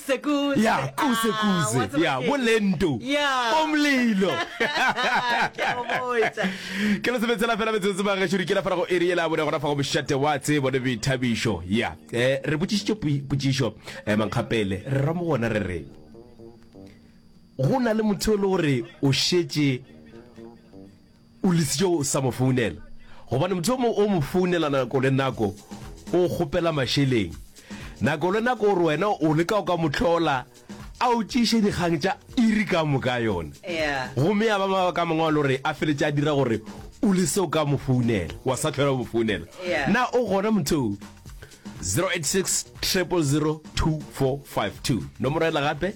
Sekuze. Ya, kuze, Ah, kuze. wa tseba Ya, ke- bo lento. Ya. Bo mlilo. Ke a go botša. ke le sebetsela fela metsotso ba gešo dikela fela go eri yela bone gona fa go mošate wa tsebo le boithabišo ya um re botšišitše pui- potšišo um mankgapele re ra mo gona re re go na le motho e le gore o šetše O lesitše o sa mo founela gobane motho yo mongwe o mo founela nako le nako, o go kgopela mašeleng. Nako le nako o re wena o leka go ka mo hlola a o tšeiše dikgang tša iri ka moka yona. Gomme ya ba mabaka a mangwe a lo re a feletše a dira gore o lese go ka mo founela, wa sa tlhola o mo founela. Na o gona motho o? 086 000 2452, nomoro yela gape.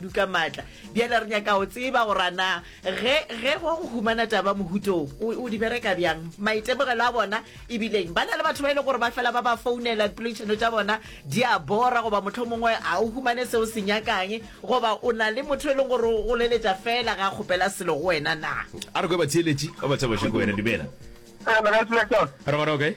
duka maatla bjale re nyaka o tseba gore na ge ge go go humana taba mohutong o di bereka bjang maitemogelo a bona ebileng ba na le batho ba e le gore ba fela ba ba founela poledišano tša bona di a bora goba motlho mongwe a o humane seo se nyakang goba o na le motho e leng gore o leletša fela ga kgopela selo go wena na a re kwe batheeletši ba ba tshaba šeko wena dumela re bona o kae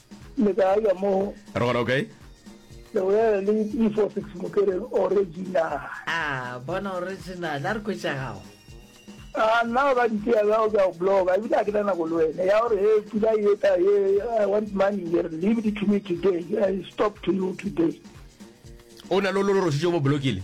le ka ya mo re gona okay le bolela le info six mokere original a bona original a re kwetšagago a nna ba ditea bja ka go bloga ebile a ke na nako le wena ya gore he pula e eta ye i want money here leave it to me today i stop to you today o na lo lo rositse mo blokile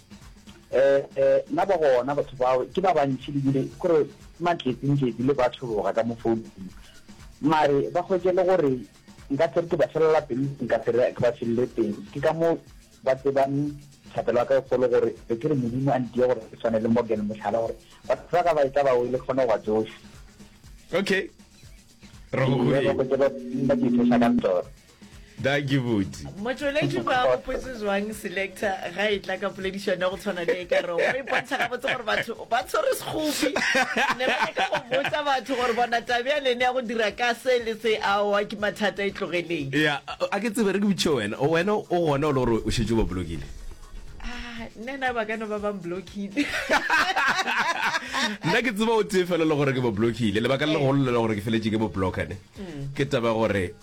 Eh, eh, na ba gona batho bao ke ba bantši lebile kore matletsenketsi le ba thologa ka mo founung mare ba hwetše le gore nka se re ke ba felela pelo nka se re ke ba felele pelo ke ka moo ba tsebang thapelo ya ka e kgolo gore be ke re modimo a ntiye gore ke tshwane le morgan mohlala gore batho ba ka ba e tla ba wele ke kgone go ba tsohle okay re go hwetše ba ke e tsoša ka tsona da ke botse motšweletši ba gopotse zwang selector ga e tla ka poledišano ya go tshwana le e ka rego e bontsha gabotse gore batho ba tshwere sekgopi ne ba leka go botsa batho gore bona tabe ya lene ya go dira ka se le se aowa ke mathata e tlogeleng ya a ke tsebe re ke botšhe wena wena o gona o le gore o šetse ba bolokile ah, nena ba ka no ba bang blockile nna ke tseba o tee fela le gore ke bo blockile lebaka le eh. legolo le le gore ke feletse ke bo blockane mm. ke taba gore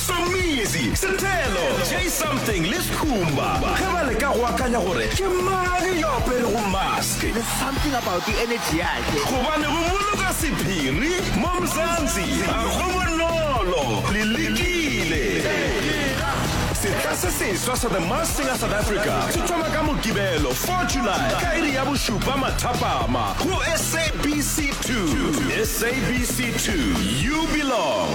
Somizi, Sethelo, Jay Something le Skhumba ge ba leka go akanya gore ke mang yo a aperego mask. There's something about the energy yakhe. Gobane go boloka sephiri mo Mzansi ga go bonolo. Le lekile. Sehla se seswa sa The Masked Singer South Africa se thoma ka Mokibelo 4 July ka iri ya bošupa mathapama go SABC. 2 sabc 2 you belong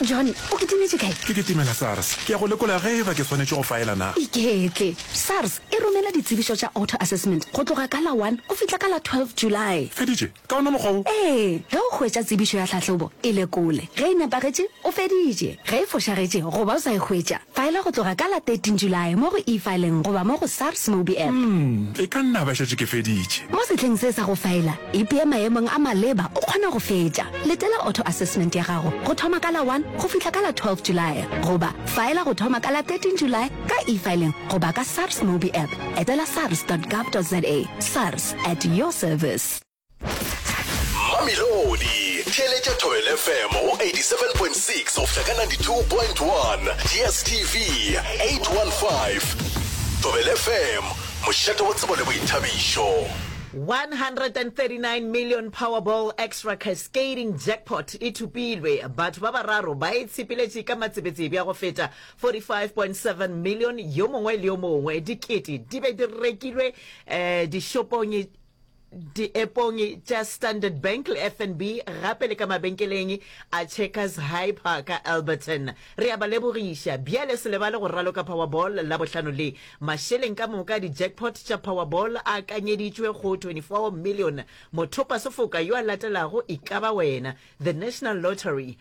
john o ke timetše kae ke ke timela sars ke ya go lekola ge e ba ke swanetše go faela na iketle sars e romela ditsebišo tša auto assessment go tloga ka la 1 go fihla ka la 12 july feditše Ka wona mokgwa wo. Ee, ge o hwetša tsebišo ya tlhahlobo, e lekole. Ge e nepagetše, o feditše. Ge e fošagetše goba o sa e hwetša, faela go tloga ka la 13 Julae mo go E-Filing goba mo go SARS Mobi App. E ka nna ba šetše ke feditše. Mo sehleng se sa go faela, ipee maemong a maleba o kgona go fetša. Letela auto assessment ya gago go thoma ka la 1 go fihla ka la 12 Julae goba faela go thoma ka la 13 Julae ka E-Filing goba ka SARS Mobi App. Etela sars dot gov dot za. SARS, at your service. Mamelodi, theeletša Thobela FM go 87.6 go fihla ka 92.1, DSTV 815. Thobela FM, mošate wo tsebo le boithabišo. 139 million Powerball Extra Cascading Jackpot e thopilwe, batho ba bararo ba e tshepeletše ka matsebetsebe a go feta 45.7 million, yo mongwe le yo mongwe. Dikete di be di rekilwe eh, dishopong diepong tša Standard Bank le FNB gape le ka mabenkeleng a Checkers Hyper ka Alberton. Re a ba lebogiša. Bjale se lebale go raloka Powerball Labohlano le. Mašeleng ka moka a di-jackpot tša Powerball a akanyeditšwe go 24 million. Mothopasefoka yo a latelago e ka ba wena. The National Lottery.